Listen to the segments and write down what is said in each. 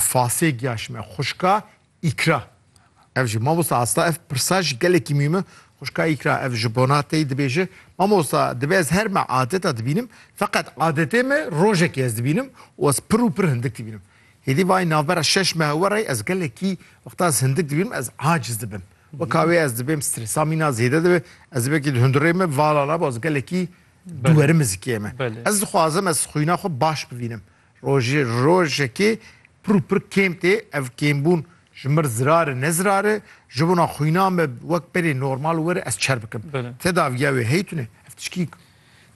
Fasê giya ji me xwişka Îkra. Ev jî mamosta asta ev pirsa jî gelekî mîm e. Xwişka Îkra ev ji bona tey dibêje, Mamosta dibe ez her me adeta dibînim, feqet adetê me rojekê ez dibînim û ez pir û pir hindik dibînim. Hêdî vayî navbera şeş mehe werayî ez gelekî wexta ez hindik dibînim ez aciz dibim. Weka wê ez dibêm stresa mîna zêde dibe, ez dibekî di hundirê me vala nabe ez gelekî duwerim zikê me. Ez dixwazim ez xwîna xwe baş bivînim. Rojê rojekê pir û pir kêm tê. Ev kêmbûn ji mir zirar e ne zirar e. Ji bona xwîna me wek berê normal were ez çer bikim. Teda viya wê hey tune. Ev tişkî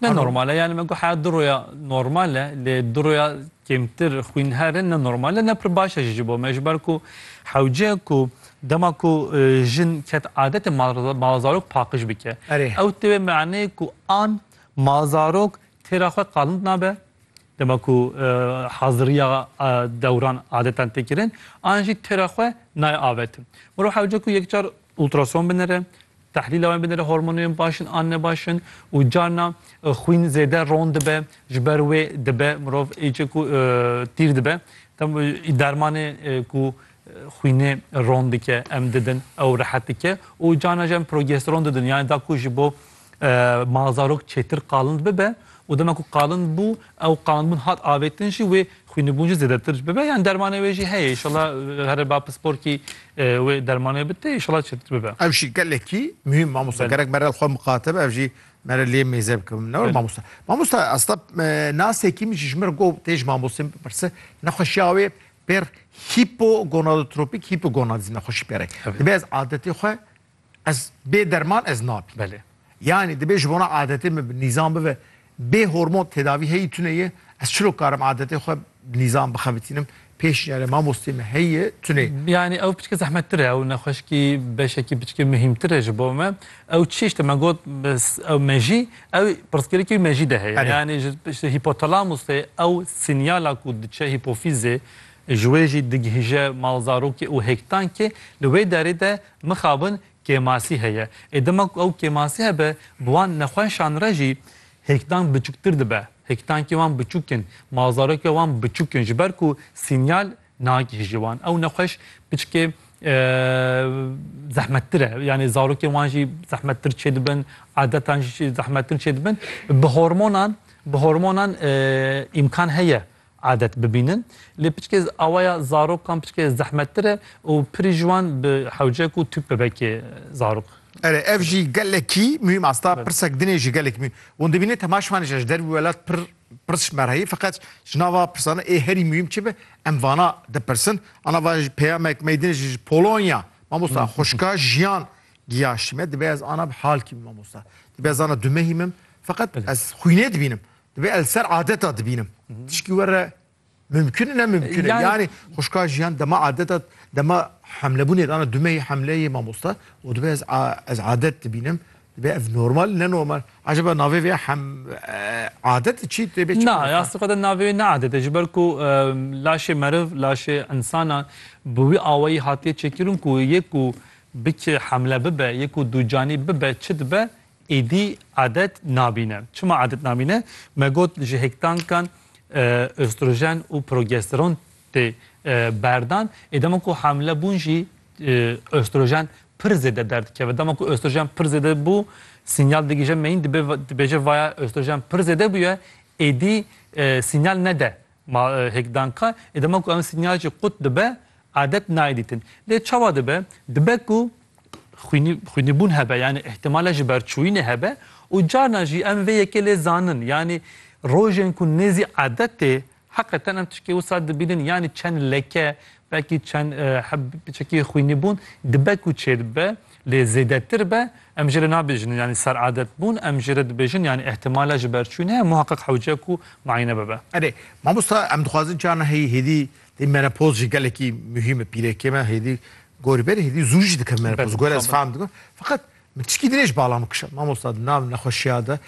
Ne normal e. Yanî me got heya du roya normal e lê du roya kêmtir xwîn her e ne normal e ne pir baş e jî ji bo me ji ber ku hewce ku dema ku jin ket adetê malzarok paqij bike ew tê wê maneyê ku an malzarok têra xwe qalind nabe Dema ku haziriya dewran adetan tê kirin, an jî têra xwe nayê avetin. Mirov hewce ku yekcar ultrason binêre, tehlîla wan binêre hormonên baş in an nebaş in û carna xwîn zêde ron dibe, ji ber wê dibe mirov êce ku tîr dibe. Dem dermanê ku xwînê ron dike em didin ew rehet dike û carna jî em progesteron didin yanî da ku ji bo Ma zarok çêtir qalind bibe û dema ku qalind bû ew qandbûn hat avêtin jî wê xwînibûn jî zêdetir jî bibe. Yani dermanê wê jî heye îşallah here ba pisporkî wê dermanê bite îşallah çêtir bibe. Ev jî gelekî muhîm mamosta gerek mere li xwe miqate be ev jî mere lê mêze bike min ne were mamosta. Mamosta esta nasekî min jî ji min got tê ji mamostên bipirse nexweşiya wê pêr hîpogonadotropîk hîpogonadîzm nexweşî pêre. Divê ez adetê xwe Ez bê derman ez nabî. Belê. Yanî dibê ji bona adetê min bi nîzam bibe. Bê hormon tedavî heyî tune ye. Ez çilo karim adetê xwe bi nîzam bixebitînim. Pêşniyarê mamosteyê me heyî ye tune. Yanî ew piçke zehmettir e. Ew nexweşikî beşekî piçke muhîmtir e ji bo me. Ew çi tişt e? Me got ew mejî ew pirsgirêkî wî mejî de heye. Yanî ji ji hîpotalamusê ew sînyala ku diçe hîpofîzê ji wê jî digihîje malzarokê û hêktankê li wê derê de Mixabin kêmasî heye. Ê dema ku ew kêmasî hebe bi wan nexweşan re jî hêkdan biçûktir dibe. Hêkdankî wan biçûk in, mazarokê wan biçûk in ji ber ku sînyal nagihîjî wan. Ew nexweş piçikê zehmettir e. Yanî zarokên wan jî zehmettir çê dibin, adetan jî zehmettir çê dibin. Bi hormonan bi hormonan îmkan heye adet bibînin lê piçkê awaya zarokan piçkê zehmettir e û pirî ji wan bi hewcek û tûk bebekê zarok. Erê ev jî gelekî muhîm asta pirsek din ê jî gelekî muhîm wan dibîne tema ji wan ji der wî welat pir pirs merheyî feqet ji nava pirsan ê herî muhîm çi be em vana dipirsin ana va peyamek me din ji Polonya mamosta xwişka jiyan giyaşî me dibe ez ana bi halkî min mamosta dibe ez ana dumehî min feqet ez xwînê dibînim Divê el ser adeta dibînim. Tişkî were mümkün ne mümkün. Yani, yani xuşka jiyan dema adeta dema hemlebûnê dana dumeyê hemleyê mamosta û divê ez ez adet dibînim. Divê ev normal ne normal. Acaba navê vê hem adet çî tê bê çî. Na ya sqada navê ne adet ji ber ku laşê meriv laşê insana bi wî awayî hatiye çêkirin ku yek ku bikê hemle bibe yek ku dûcanî bibe çi dibe Êdî adet nabîne. Çima adet nabîne? Me got ji hêktankan ostrojen û progesteron tê berdan. Ê dema ku hamile bûn jî ostrojen pir zêde derdikeve. Dema ku ostrojen pir zêde bû, sînyal digihije meyîn dibêje vaya ostrojen pir zêde bûye, êdî sînyal nede Ma hêk dan ka ê dema ku em sinyal jî qut dibe adet nayê dîtin. Lê çawa dibe? Dibe ku xwînî xwînîbûn hebe yanî îhtîmala ji ber çûyînê hebe û carna jî em vê yekê lê zanin yanî rojên ku nêzî adet tê heqeten em tişkê wisa dibînin yanî çend leke belkî çend heb çekî xwînîbûn dibe ku çêdibe. Lê zêdetir be em jê re nabêjin yanî seradet bûn, em jê re dibêjin yanî îhtimala ji ber çûn heye muheqeq hewce ku muayene bibe. Erê mamosta em dixwazin carna heyî hêdî tê menopoz jî gelekî muhîm e pîrekê me hêdî gorî berî hêdî zû jî dikeve menopoz gorî ez fam dikim feqet min tiştî dirêj bala min kişand mamosta di nav nexweşiya de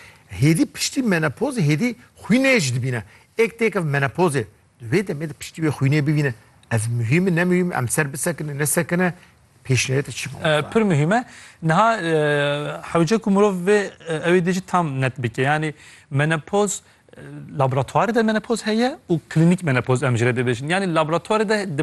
hêdî piştî menopozê hêdî xwînê jî dibîne êk têkeve menopozê Di vê demê de piştî wê xwînê bivîne ev muhîm e ne muhîm e, em ser bisekine nesekine pêşniyareta çi ma wexta? Pir muhîm e. Niha hewce ku mirov vê ew ê dê jî tam net bike. Yanî menopoz laboratuwarê de menopoz heye û klînîk menopoz em ji re dê bêjin. Yanî laboratuwarê de dibe